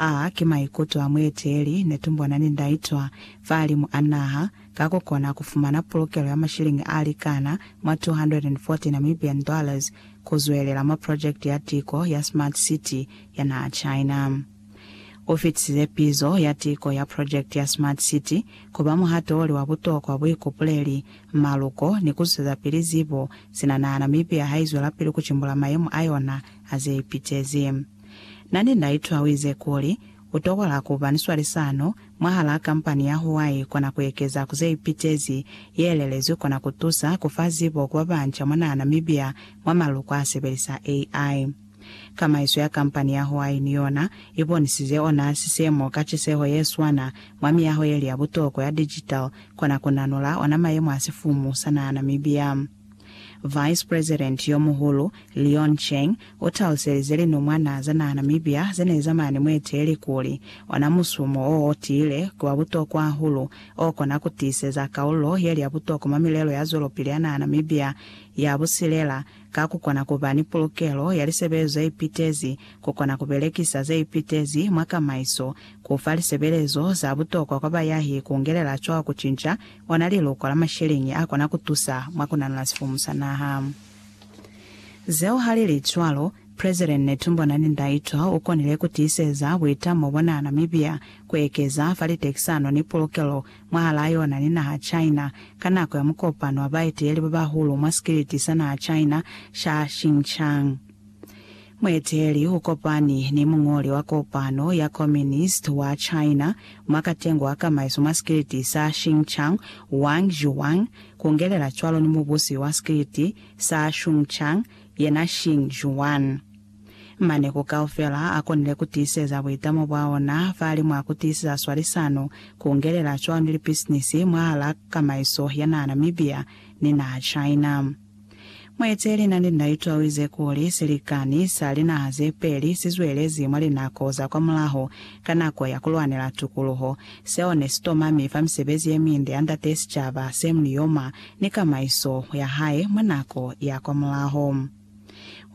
A ki maikuto a mueteeli ne tumbwana ni ndaitwa fahalimu a naha, ka ku kona ku fumana pulukelo ya mashilingi a likana mwa 240 Namibian dollars ku zwelela mwa project ya tiko ya Smart City ya naha China. U fitisize pizo ya tiko ya project ya Smart City ku ba muhato o li wa butokwa, buikupuleli, maluko, ni ku zuseza pili zibo, sina naha Namibia ha i zwelapili ku cimbula mayemo a yona a ze ipitezi. Na ne na itwa o ize kuli, U tokola ku ba ni swalisano mwahalaa kampani ya Huawei kona ku ekeza ku ze ipitezi, ye elelezwi kona ku tusa ku fa zibo ku ba banca mwa naha Namibia mwa maluko a sebelisa AI. Kamaiso ya kampani ya Huawei ni yona i bonisize ona sisemo ka ciseho ye swana mwa miyaho ye li ya butokwa ya digital kona ku nanula ona mayemo a sifumu sa naha Namibia. Vice President yo muhulu, Leon Cheng, u taluselize linumwana za naha Namibia ze ne za mane mueteli kuli, Ona musumo o o tiile ki wa butokwa hahulu o kona ku tiiseza kaululo ye li ya butokwa mwa milelo ya zwelopili ya naha Namibia ya busilela, ka ku kona ku ba ni pulukelo ya lisebelezo ze ipitezi, ku kona ku belekisa ze ipitezi mwa kamaiso, ku fa lisebelezo za butokwa kwa bayahi ku ngelela cwaho ku cinca ona liloko la masheleñi a kona ku tusa mwa ku nanula sifumu sa naha. Zeo ha li li cwalo, President Netumbo Nandi-Ndaitwah u konile ku tiiseza buitamo bona Namibia ku ekeza fa litekisano ni pulukelo mwahalaa yona ni naha China ka nako ya mukopano wa baeteleli ba bahulu mwa sikiliti sa naha China sa Xinjiang. Mueteli ukopani ni muñoli wa kopano ya Communist wa China mwa katengo wa kamaiso mwa sikiliti sa Xinchang, Wang Zhuang, kungelela cwalo ni mubusi wa sikiliti sa Shunchang, yena Xin Zhuan. Mane ku kaufela akonile kutiiseza buitamo bwaona fahali mwa kutiiseza swalisano, kungelela cwalo ni lipisinisi mwahala kamaiso ya naha Namibia ni naha China. Muhece lina ni nda itwawi ze kuli silikani sa linaha ze peli si zwelezi mwa linako za kwa mulaho ka nako ya ku lwanela tukuluho. Seo ne si tomami fa misebezi ye minde ya Ndate sicaba se Mlioma ni kamaiso ya hae mwa nako ya kwa mulaho.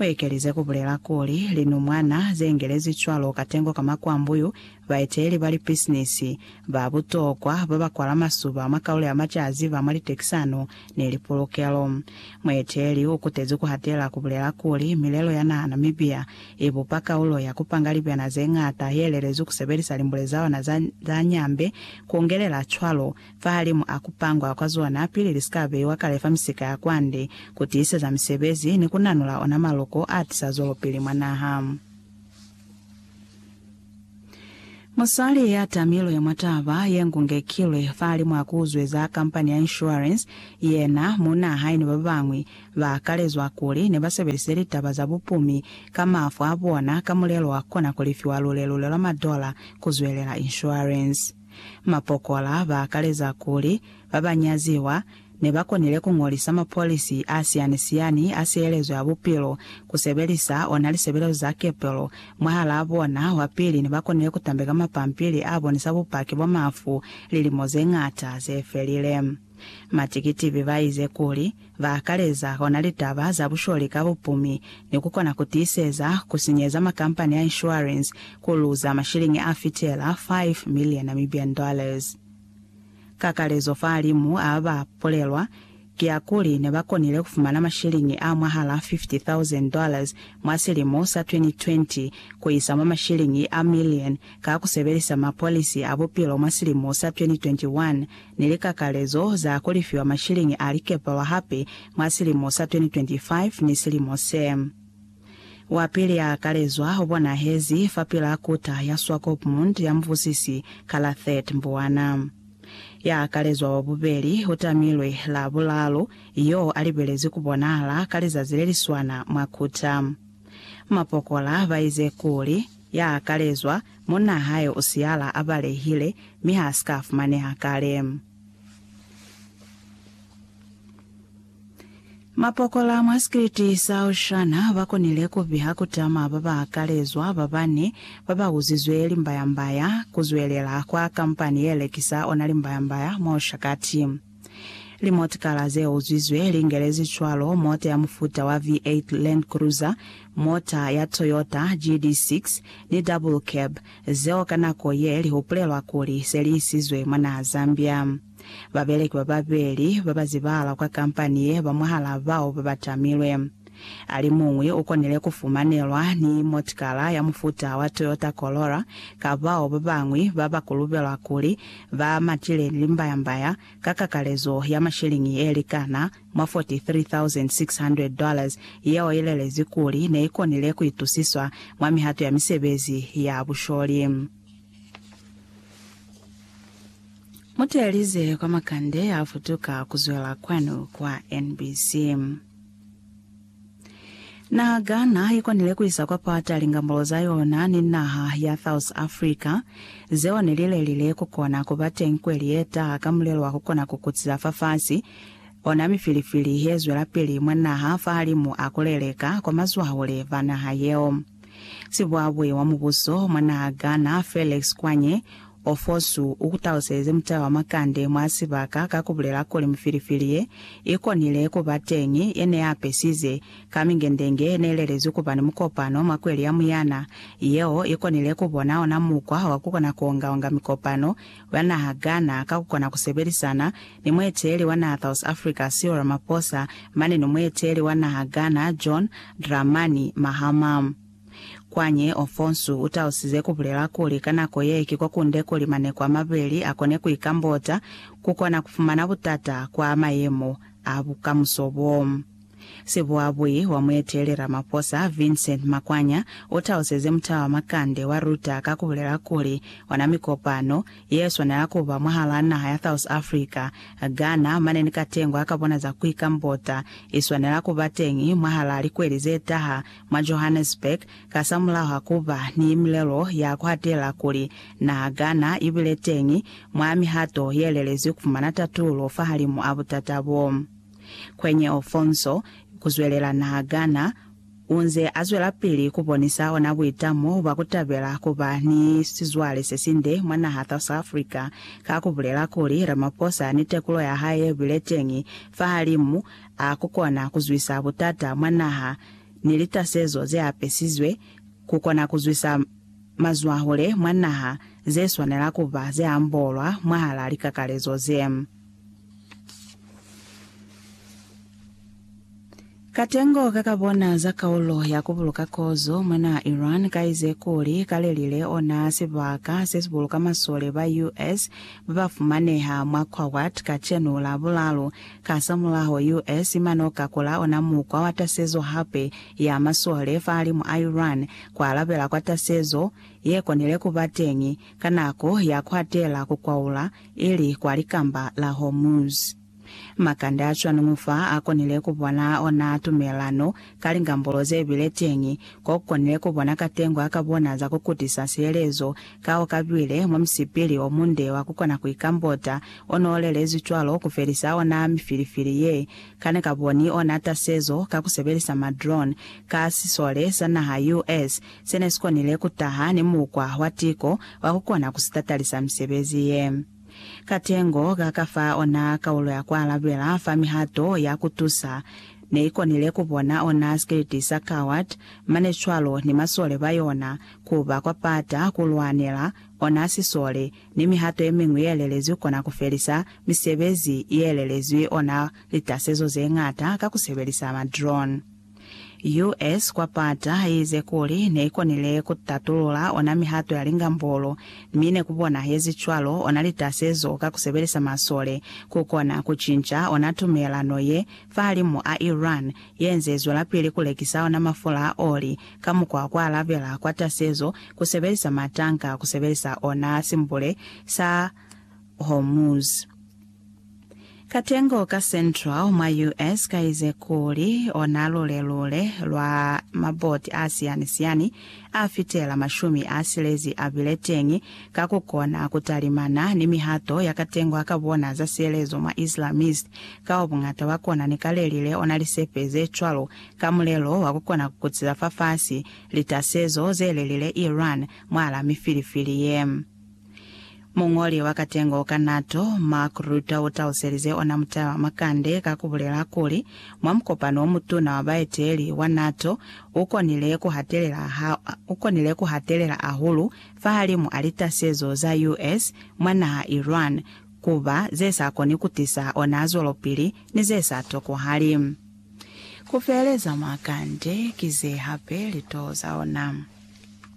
U ekelize ku bulela kuli, Linumwana ze ngelezi cwalo katengo ka makwambuyu, baeteeli ba lipisinisi ba butokwa ba ba kwala masuba mwa kaulo ya macazi ba mwa litekisano ne li pulukelo. Mueteleli u kutezi ku hatela ku bulela kuli, Milelo ya naha Namibia i bupa kaulo ya ku panga libyana ze ñata ye lelezwi ku sebelisa limbule za ona za za nyambe, ku ungelela cwalo, fahalimu a ku pangwa kwa zona pili li si ka beiwa kale fa misika ya kwande, ku tiiseza misebezi ni ku nanula ona maloko a tisa zwelopili mwa naha. Musali ya tamilwe mwa taba ye ngungekilwe fahali mwa ku zweza kampani ya inshuarensi, yena, muuna hae ni ba bañwi ba kalezwa kuli ne ba sebelise litaba za bupumi ka mafu a bona ka mulelo wa kona ku lifiwa lule-lule lwa madola ku zwelela inshuarensi. Mapokola ba kaleza kuli ba ba nyaziwa Ne ba konile ku ñolisa mapolisi a siyani-siyani a sielezo ya bupilo, ku sebelisa ona lisebelezo za kepelo. Mwahalaa bona, wa pili ne ba konile ku tambeka mapampili a bonisa bupaki bwa mafu lilimo ze ñata ze felile. Matikitibi ba ize kuli, ba akaleza ona litaba za busholi ka bupumi, ni ku kona ku tiiseza ku sinyeza makampani a inshuwarensi ku luza mashiliñi a fitela 5 miliyo Namibian dollars. Kakalezo fahalimu a ba bulelwa kiakuli ne ba konile ku fumana mashiliñi a mwahala 50,000 dollars mwa silimo sa 2020 ku isa mwa mashiliñi a million ka ku sebelisa mapolisi a bupilo mwa silimo sa 2021 ni likakalezo za ku lifiwa mashiliñi a likepalwa hape mwa silimo sa 2025 ni silimo se Wapili yaakalezwa ubonahezi fapilaa kuta ya Swakopmund ya mubusisi Kalathet Mbuana. Yaakalezwa wabubeli utamilwe Labulalu yoo alibelezi kubonahala ka lizazi leliswana mwa kuta. Mapokola baize kuli, yaakalezwa, munna hae usihala abalehile mi haasika afumaneha kale. Mapokola mwa sikiliti sa Oshana ba konile ku piha ku tama ba ba kalezwa ba bane ba ba uzizwe limbayambaya ku zwelela kwa kampani ye lekisa ona limbayambaya mwa Oshakati. Limotikala ze uzwizwe li ngelezi cwalo mota ya mufuta wa V8 Land Cruiser, mota ya Toyota GD6 ni double cab, zeo ka nako ye li hupulelwa kuli se li isizwe mwa naha Zambia. Babeleki bababeli babazibahala kwa kampani ye ba mwahalaa bao babatamilwe. Alimuñwi ukonile kufumanelwa ni motikala ya mufuta wa Toyota Corolla ka bao babañwi babakulubelwa kuli ba matile limbaya-mbaya ka kakalezo ya mashiliñi yelikana mwa 43,600 dollars yeo ilelezi kuli neikonile kuitusiswa mwa mihato ya misebezi ya busholi. Muteelize kwa makande a futuka kuzwela kwanu kwa NBC. Naha Ghana ikonile kuisa kwa pata lingambolo za yona ni naha ya South Africa, zeo nelilelile kukona kuba teñi kweli yetaha ka mulelo wa kukona kukutiza fafasi, ona mifilifili yezwelapili mwa naha fahalimu a kuleleka kwa mazwahule ba naha yeo. Sibuabui wa mubuso mwa naha Ghana Felix Kwanye Ofosu u kutaluseze mutala wa makande mwa sibaka ka ku bulela kuli mifilifili ye i konile ku ba teñi ye ne ya pesize ka mingendenge ye ne i lelezwi ku ba ni mukopano mwa kweli ya Muyana yeo i konile ku bona ona mukwa wa ku kona ku onga-onga mikopano wa naha Ghana ka ku kona ku sebelisana ni mueteeli wa naha South Africa Cyril Ramaphosa mane ni mueteeli wa naha Ghana John Dramani Mahama. Kwañi Ofonsu utausize kubulela kuli ka nako ye ki kwakunde kuli maneko amabeli akone kuikambota, kukona kufumana butata kwa mayemo a bukamuso bo. Sibuabui wa mueteleli Ramaphosa, Vincent Makwanya, utauseze mutala wa makande wa Reuter ka kubulela kuli ona mikopano ye swanela kuba mwahalaa naha ya South Africa, Ghana mane ni katengo akabona za kuikambota iswanela kubateñi mwahalaa likweli zetaha mwa Johannesburg, kasamulaho ku ba ni milelo ya ku hatela kuli na kana i bile teñi mwa mihato ye lelezwi ku fumana tatulo fahalimu a butata bo. Kwenye Ofonso, ku zwelela na kana, u nze a zwelapili ku bonisa ona buitamo bwa ku tabela ku ba ni sizwale se sinde mwa naha South Africa ka ku bulela kuli Ramaphosa ni tekulo ya hae ye bile teñi fahalimu a ku kona ku zwisa butata mwa naha ni litasezo ze apesizwe ku kona ku zwisa mazwahule mwa naha ze swanela ku ba ze ambolwa mwahal'a likakalezo ze. Katengo ka ka bona za kaulo ya ku buluka kozo mwa naha Iran ka ize kuli ka lelile ona sibaka se si buluka masole ba US ba ba fumaneha mwa Kuwait kacenu la bulalu Kasamulaho, US mane o ka kula ona mukwa wa tasezo hape ya masole fahalimu a Iran, ku alabela kwa tasezo ye konile ku ba teñi ka nako ya ku atela ku kwaula, ili kwa Likamba la Hormuz. Makande a cwani mufa a konile ku bona ona tumelano Ka lingambolo ze bile teñi, ko konile ku bona katengo ya ka bona za ku kutisa sielezo, ka o ka bile mwa musipili o munde wa ku kona ku ikambota, o n'o lelezwi cwalo ku felisa ona mifilifili ye ka ne ka boni ona tasezo ka ku sebelisa ma drone, ka sisole sa naha US se ne si konile ku taha ni mukwa wa tiko wa ku kona ku sitatalisa misebezi ye. Katengo ka ka fa ona kaulo ya ku alabela fa mihato ya ku tusa ne i konile ku bona ona sikiliti sa Coward, mane cwalo ni masole ba yona, ku ba kwa pata ku lwanela ona sisole, ni mihato ye miñwi ye lelezwi ku kona ku felisa misebezi ye lelezwi ona litasezo ze ñata ka ku sebelisa ma drone. US. kwa pata ize kuli neikonile kutatulula ona mihato ya lingambolo, mi nekubonahezi cwalo ona litasezo ka kusebelisa masole kukona kucinca ona tumelano ye fahalimu a Iran yenze izwelapili kulekisa ona mafula a oli ka mukwa kwa alabela kwa tasezo kusebelisa matanka kusebelisa ona Simbule sa Hormuz. Katengo ka Central mwa US. kaize kuli ona lule-lule lwa maboti a siyani-siyani a fitela mashumi a silezi a bile teñi ka ku kona ku talimana ni mihato ya katengo ka bona za sielezo mwa Islamist kao buñata bwa kona ni kalelile ona lisepe ze cwalo ka mulelo wa ku kona ku kutiza fafasi litasezo ze lelile Iran mwala mifilifili ye Muñoli wa katengo ka NATO, Mark Rutte u taluselize ona mutala wa makande ka ku bulela kuli, Mwa mukopano o mutuna wa baeteli wa NATO, u konile ku hatelela, u konile ku hatelela hahulu fahalimu a litasezo za US mwa naha Iran, ku ba ze sa koni ku tisa ona zwelopili ni ze sa tokohali. Ku feheleza makande ki ze hape litoho za ona.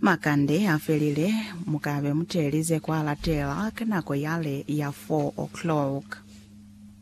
Makande a felile, mu ka be mu telize kwa latela ka nako yale ya four o'clock.